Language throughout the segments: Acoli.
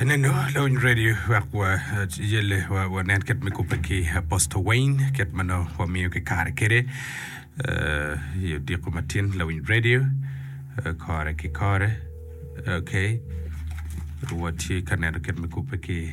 Eneno lawiny radio wek wa yelle wa wanen kit me kubbe ki Apostle Wayne kit ma nongo wamiyo ki kare kede eh, i odiko matin lawiny radio eh, kore ki kore okay watye ka neno kit me kubbe ki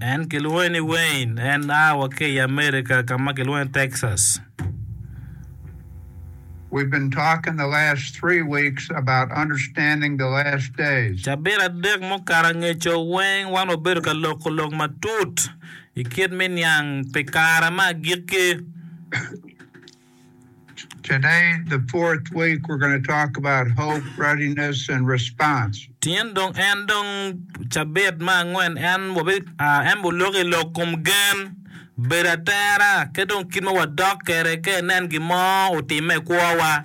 En kilwonge ni Wayne. En a wa ki i Amerika ka ma kilwongo ni Texas. Cabit adek mukato angeco weng wan wabedo ka loko lok matut i kit me niang pi kare me agikki. Tyen dong en dong cabit me angwen en wabelok i lok kom gen, bedo atera, ki dong kit ma wadok kwede ka inen gin mo otimme i kwowa.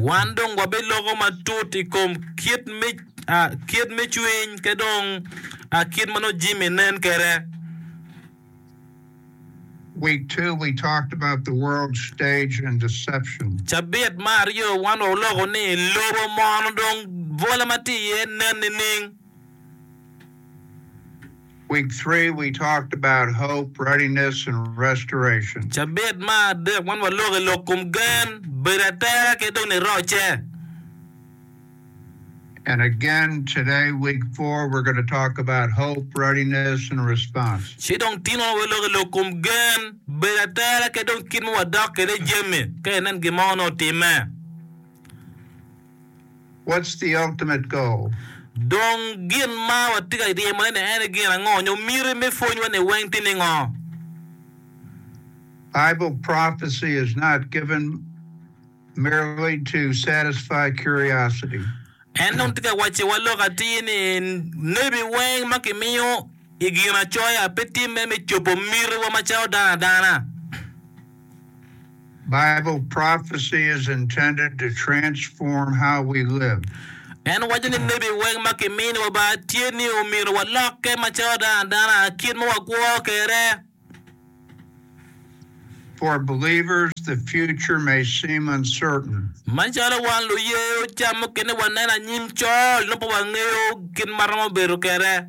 Wan dong wabiloko matut i kom kit me cwiny ki dong kit ma nongo jami nen kwede. Cabit me aryo wan oloko ni lobo mono dong bwola ma tye iye nen nining? Cabit ma adek, man waloko i lok kom gen, bedo atera ki dong nirocce. Ci dong tin wano waloko i lok kom gen, bedo atera ki dong kit ma wadok kwede jami ka inen gin mo nongo otimme. What's the ultimate goal? Dong gin ma watye ka ryemone-ni en aye gin ango, nyo miti me pwonywa-ni weng tye ningo? Bible prophecy is not given merely to satisfy curiosity. En dong tye ka wacciwa lok atir ni nebi weng ma kimiyo i Ginacoya pe tye mere me cobo mitiwa macalo dano adana. Bible prophecy is intended to transform how we live. En waco ni lebi weng ma kimini wa ba tye ni omyero walokke macalo dano adana kit ma wagworo kede. For believers, the future may seem uncertain. Macalo wan luye oca mukene waneno anyim col nongo pe wangeyo kit ma romo bedo kede.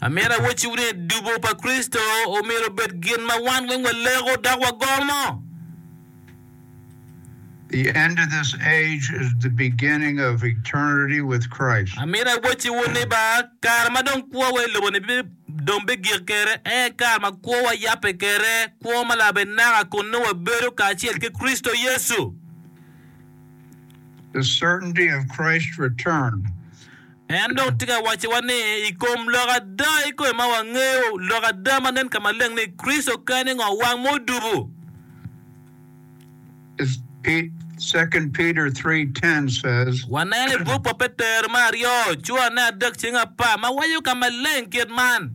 Amyero awacciwu ni dubo pa Kricito omyero obed gin ma wan weng waleko dok wagomo. Amyero awacciwu ni ba kare ma dong kwowa i lobo-ni dong bigik kede aye kare ma kwowa yabbe kede kwo ma labenaka kun nongo wabedo kacel ki Kricito Yecu. En dong tye ka wacciwa ni, i kom lok ada i kome ma wangeyo, lok ada ma nen ka maleng ni Kricito kene ngo wang ma odubo. Waneno i buk pa Petero me aryo, curane adek cing apar, ma waco ka maleng kit man.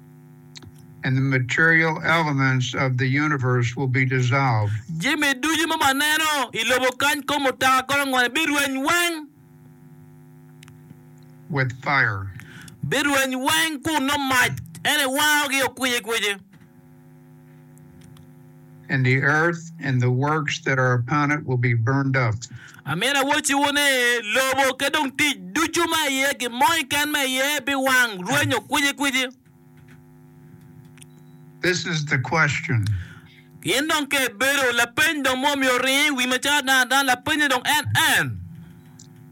and the material elements of the universe will be dissolved. Jami ducu ma waneno i lobo kany, kom mutoka, golongole, birweny weng. with fire. Birweny weng kun nongo mac, en ewangogi, okwici kwici. and the earth and the works that are upon it will be burned up. Amina awocciwu ni, lobo ki dong tic ducu ma iye, gin mo keken ma iye biwang, rwenyo kwicikwici. This is the question. Gin dong ke bedo, lapeny dong ma omyero oring i wi macalo dano adano, lapenye dong en en.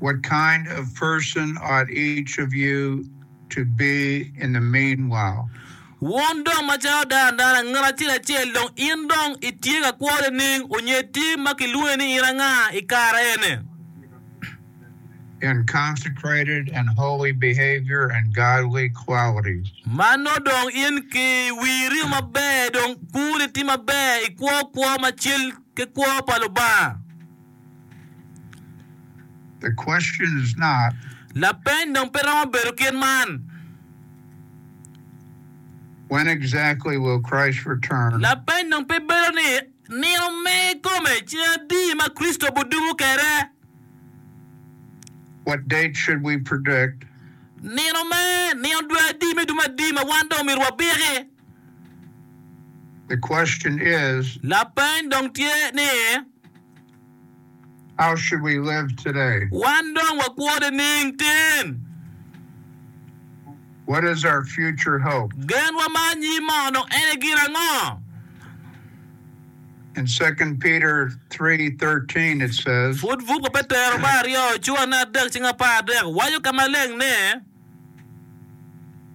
What kind of person ought each of you to be in the meanwhile? Wun dong macalo dano adana, ngat acel acel dong in dong itye ka kwore nining? Onyed tye ma kilwonge ni in anga i kare eni? In consecrated and holy behavior and godly qualities. Mano dong in ki wiri maber dong kuri tye maber ikwo kwo ma cel ki kwo pa Lubanga? Lapeny dong pe romo bedo kit man. Lapeny dong pe bedo ni, Nino me kome cen adi ma Kricito bidumo kede? Nino me nino dwe adi me dumo adi ma wan dong omyero wabiki? The question is. Lapeny dong tye ni. How should we live today? Wan dong wakwo nining tin? What is our future hope? Genwa ma anyim mono en e gin ango? In Second Peter three thirteen it says. Pud buk pa Petero me aryo cura ne adek cing apar adek waco ka maleng ni.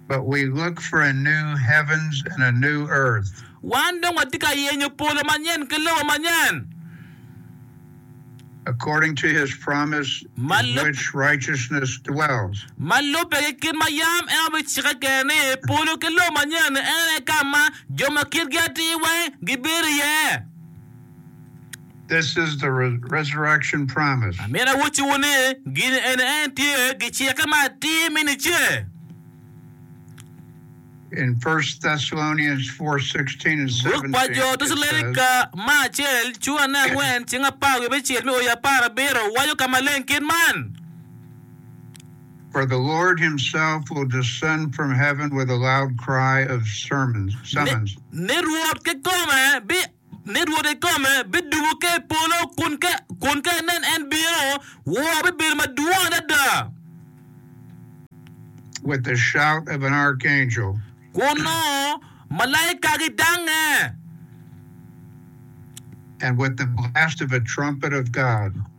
But we look for a new heavens and a new earth. Wan dong watye ka yenyo polo manyen ki lobo manyen. According to his promise Ma in lub- which righteousness dwells. Ma lubbe ki kit ma yam en obicikke kwede ni, polo ki lobo manyen-ni en aye ka ma jo ma kitgi atir weng gibedo iye. Amito awocciwu ni, gin ene en tye gicikke ma atir me nice. Buk pa Jo Tecalonika me acel cura ne angwen ceng apar wiye me cel me oii apar abiro waco ka maleng kit man, Ni Rwot kikome bi. ni Rwot ikome bidumo ka i polo, kun ka inen en bino, wor bibedo madwong adada. Kun nongo malaika gidangnge,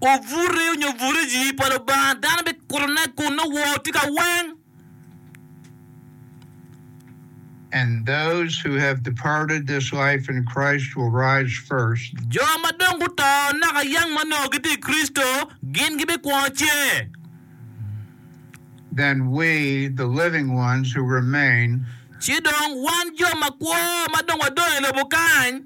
obuto onyo buriji pa Lubanga, dano bikutone, kun nongo wor tye ka weng. and those who have departed this life in Christ will rise first. Jo ma dong guto naka yang ma onongo gitye i Kricito, gin gibikwongo ce. Then we, the living ones who remain. Ci dong wan jo makwo ma dong wadong i lobo kany.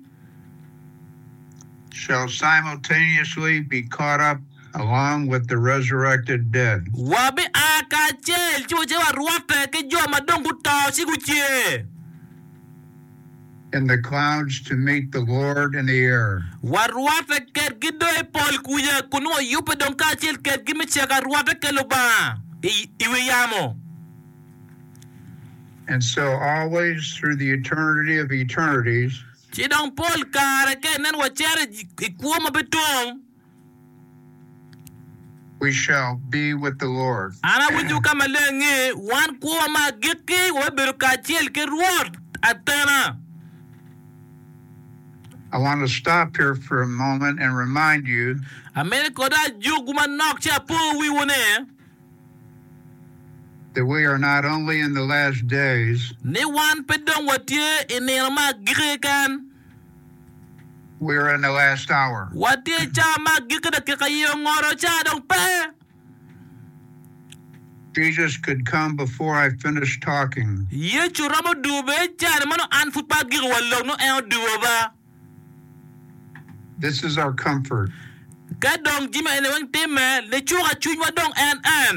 Shall simultaneously be caught up. along with the resurrected dead. Wabia kacel ci wace warwatte ki jo ma dong guto ci gucer. In the clouds to meet the Lord in the air. Warwatte kedgi dong i pol kuca, kun wayubbe dong kacel kedgi me ceko arwatte ki Lubanga i, i wi yamo. And so always through the eternity of eternities. Ci dong pol kare ka inen wacito i, i kwo ma pe tum. An awinyo ka maleng ni wan kwo ma agikki wabibedo kacel ki Rwot atena. Amito koda ajukwu manok ci apo wiwu ni, ni wan pe dong watye i nino me agikki keken. Watye i cawa ma agikki dakika i ongoro cawa dong pe. Yecu romo duwo bene i caa ni meno an pud pe agikki wa lok nongo en oduwo ba. Ka dong jami eni weng timme, nicuka cwinywa dong en en.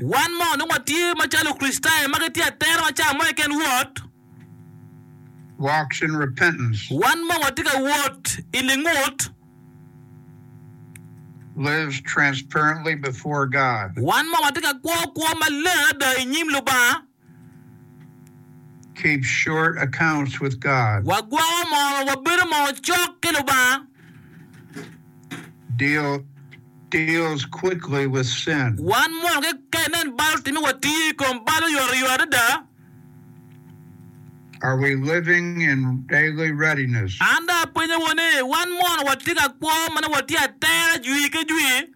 Wan ma onongo watye macalo Kricitayo ma gitye atera wa ca mo keken wot, wan ma watye ka wot i lingut, wan ma watye ka kwo kwo maleng ada i nyim Lubanga, Wagwoko moo, wabedo moo cok ki Lubanga. Wan mono ki ka inen bal otimi, watiyo i kom bal oyotoyot adada. An dong apenyowu ni, wan mono watye ka kwo ma nongo watye atera jwi ki jwi?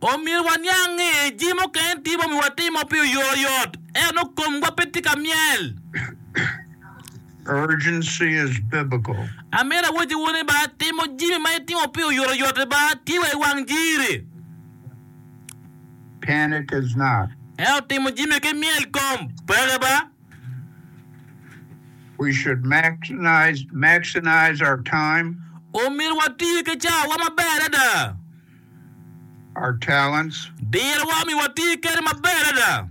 Omyero waniang ni jami mukene tye ma omyero watimo pi oyoyot, ento komwa pe tye ka myel. Amyero awacciwu ni timo jami ma itimo pi oyotoyot tye wa i wang jiri, ento timo jami ki myel kom peke. Omyero wati ki cawa maber adada. our talents, Dirowa omiyo wati kede maber adada.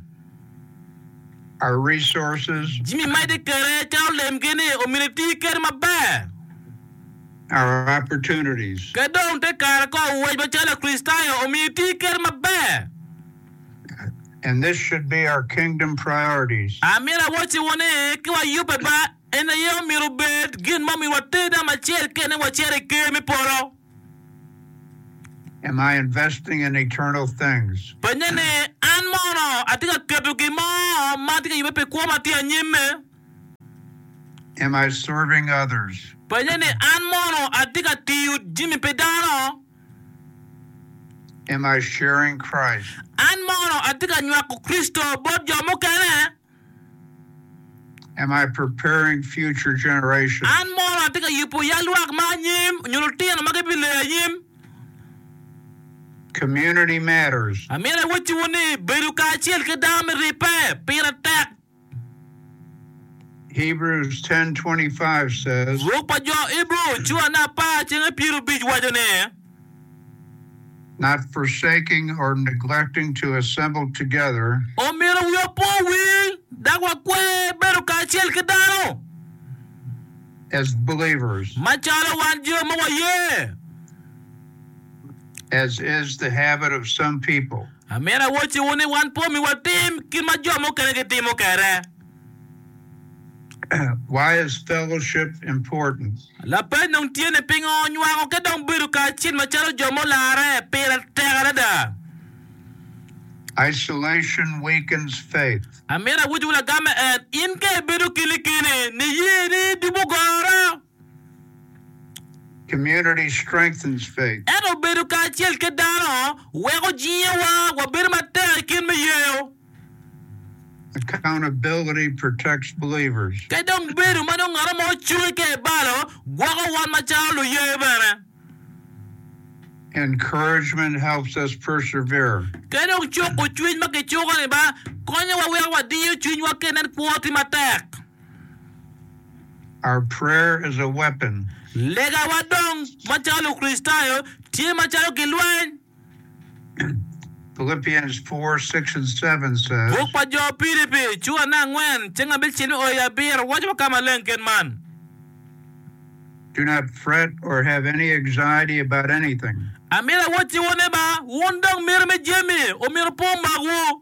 our resources, Jami ma itye kede calo lemgi ni omini iti kede maber. our opportunities, Ke dong te kare ko wec macalo Lakricitayo omiyo iti kede maber. and this should be our kingdom priorities. Amyero awacciwu ni ki wayubbe ba en aye omyero obed gin ma omyero water dama acel kene wacito i ker me polo. Penye ni, 'An mono atye ka keto gin mo ma atye ka yubbe pi kwo ma tye anyimme? Penye ni, 'An mono atye ka tiyo jami pi dano? An mono atye ka nywako Kricito bot jo mukene? An mono atye ka yubo yal lwak ma anyim nyo lutino ma gibileyo anyim? Amito awacciwu ni bedo kacel ki dano me ribbe pire tek. Buk pa jo Ibru cura ne apar cenge pyerrubic waco ni, not forsaking or neglecting to assemble together. Omyero wiwa opo owil dok wakwe bedo kacel ki dano. As believers. Macalo wan jo ma waye. As is the habit of some people. Amyero awocciwu ni wan pe omiwa tim kit ma jo mukene gitimo kwede. Why is fellowship important? Lapeny dong tye ni pingo nywako ki dong bedo kacel macalo jo mularre pire tek adada? Isolation weakens faith. Amito awacciwu lagamme en, in ka ibedo keni keni, niyeni dubu goro. Ento bedo kacel ki dano weko jingewa wabedo matek i kit me yeyo. Ka dong bedo ma nongo ngat mo ocungi ka i balo gwoko wan macalo luye bene. Ka dong cuko cwiny ma kicuko-ni ba konyowa weko wadiyo cwinywa ka inen kwo tye matek. Our prayer is a weapon. Legawa dong macalo Lukricitayo tye macalo gilweny. Philippians 4, 6 and 7 says. Buk pa jo Pilipi cura ne angwen ceng abicel me oyo abiro waco wa ka maleng kit man. Do not fret or have any anxiety about anything. Amyero awacci wun ni ba wun dong miti me jami omyero pe omakwu.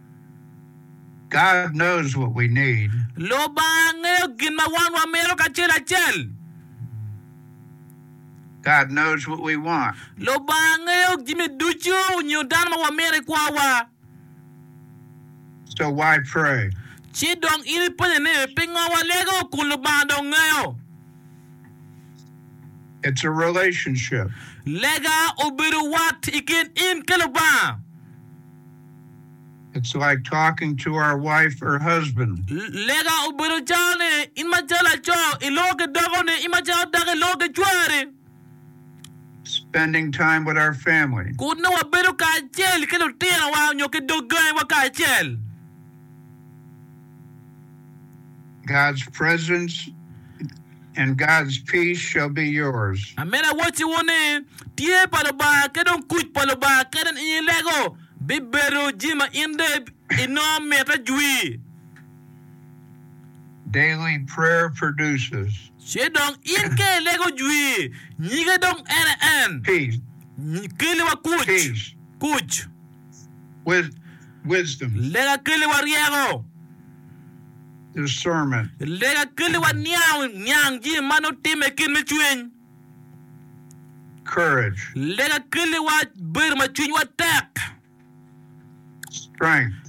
God knows what we need. Lubanga ngeyo gin ma wan wamito kacel acel. God knows what we want. Lubanga ngeyo jami ducu nyo dano ma wamito i kwawa. So why pray? Ci dong in ipenye ni, pingo walego kun Lubanga dong ngeyo? It's a relationship. Lega obedo wat i kin in ki Lubanga. It's like talking to our wife or husband. Lega obedo calo ni in macalo laco iloko ki dakoni, in macalo dako iloko ki cwari. Spending time with our family. Kut nongo wabedo kacel ki lutinowa nyo ki dog gangiwa kacel. God's presence and God's peace shall be yours. Amina awacciwu ni, tye pa Lubanga ki dong kuc pa Lubanga kadi in i lego bibedo jami ma in dong inongo mitte jwi. Daily prayer produces. Ci dong in ka ilego jwi, nyige dong en aye en. Peace. Keliwa kuc. Peace. Kuc. Lega keliwa ryeko. Lega keliwa niang jami ma nongo timme i kit me cwiny. Lega keliwa bedo ma cwinywa tek.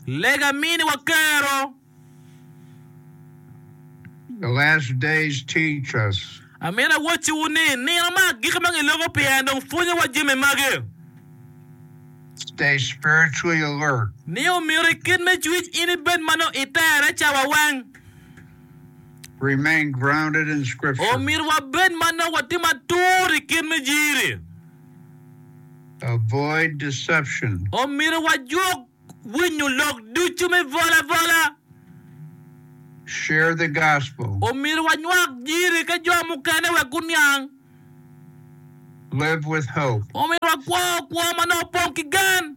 Lega miniwa kero. the last days teach us. Amito awacciwu ni, nino ma agikki ma giloko pyerni dong pwonyowa jami magi. Stay spiritually alert. Ni omyero i kit me cwiny in ibed ma nongo itere cawa weng. Remain grounded in Scripture. Omyero wabed ma nongo watye matur i kit me jiri. Avoid deception. Omyero wajwok winyo lok ducu me bol abola. Share the Gospel. Omyero wanywak Jiri ki jo mukene wek guniang. Live with Hope. Omyero wakwo kwo ma nongo opong ki gen.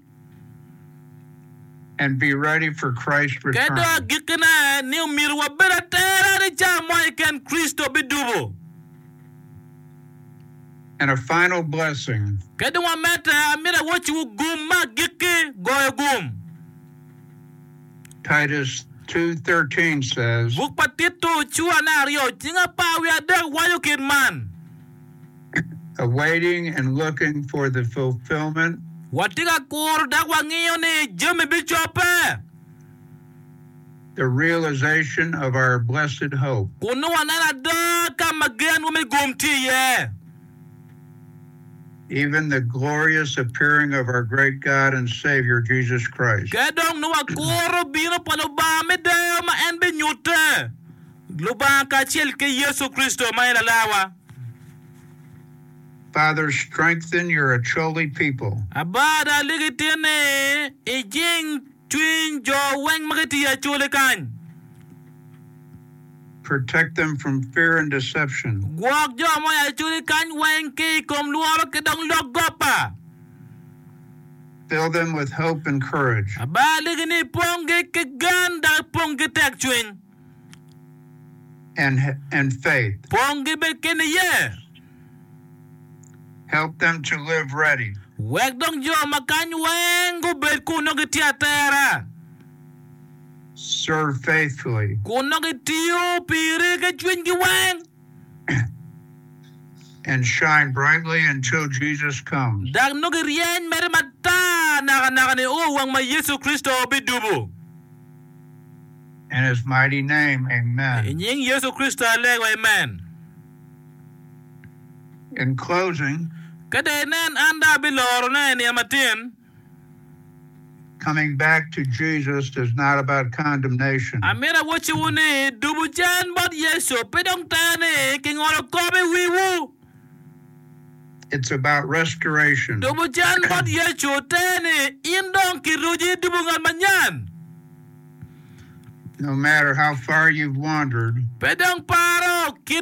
And be ready for Christ's return. Ki dong agikkine ni omyero wabed atera ni ca mo keken Kricito bidubo. and a final blessing. Ka dong amedde, amito awocciwu gum me agikki, goyo gum. Titus 2:13 says. Buk pa Tito cura ne aryo cing apar wiye adek waco kit man. Awaiting and looking for the fulfillment. Watye ka kuro dok wangiyo ni jami bicobbe. the realization of our blessed hope. Kun nongo waneno ada ka ma genwa me gum tye iye. Even the glorious appearing of our great God and Savior, Jesus Christ. Ka dong nongo wakuro bino pa Lubanga me deyo ma en binyutte, Lubanga kacel ki Yecu Kricito ma en Lalarwa. Father, strengthen your Acholi people. Aba, ada ligi tinni i jing. Cwiny jo weng ma gitiyo acoli kany. Protect them from fear and deception. Gwok jo ma oya acoli kany weng ki i kom lworo ki dong lok gopa. Fill them with hope and courage. Abaligi ni iponggi ki gen dok ipong ki tekcwiny. and, and faith. Ponggi bed ki niye. Help them to live ready. Wek dong jo ma kany weng gubed kun nongo gitye atera. Serve faithfully. Kun nongo gitiyo piri ki cwinygi weng. And shine brightly until Jesus comes. Dok nongo giryeny mere matar nakanaka ni o wang ma Yecu Kricito bidubo. In His mighty name, amen. I nying Yecu Kricito alego, amen. In closing. Ka dong inen, an dong abilorone i nino matin. Coming back to Jesus is not about condemnation. Amito awocciwu ni, dubu can bot Yecu pe dong tero ni kingolo kop i wiwu. Dubu cen bot Yecu te ni, In dong kiruji i dubu ngat manyen. Pe dong paro kit ma iwotoro i ye.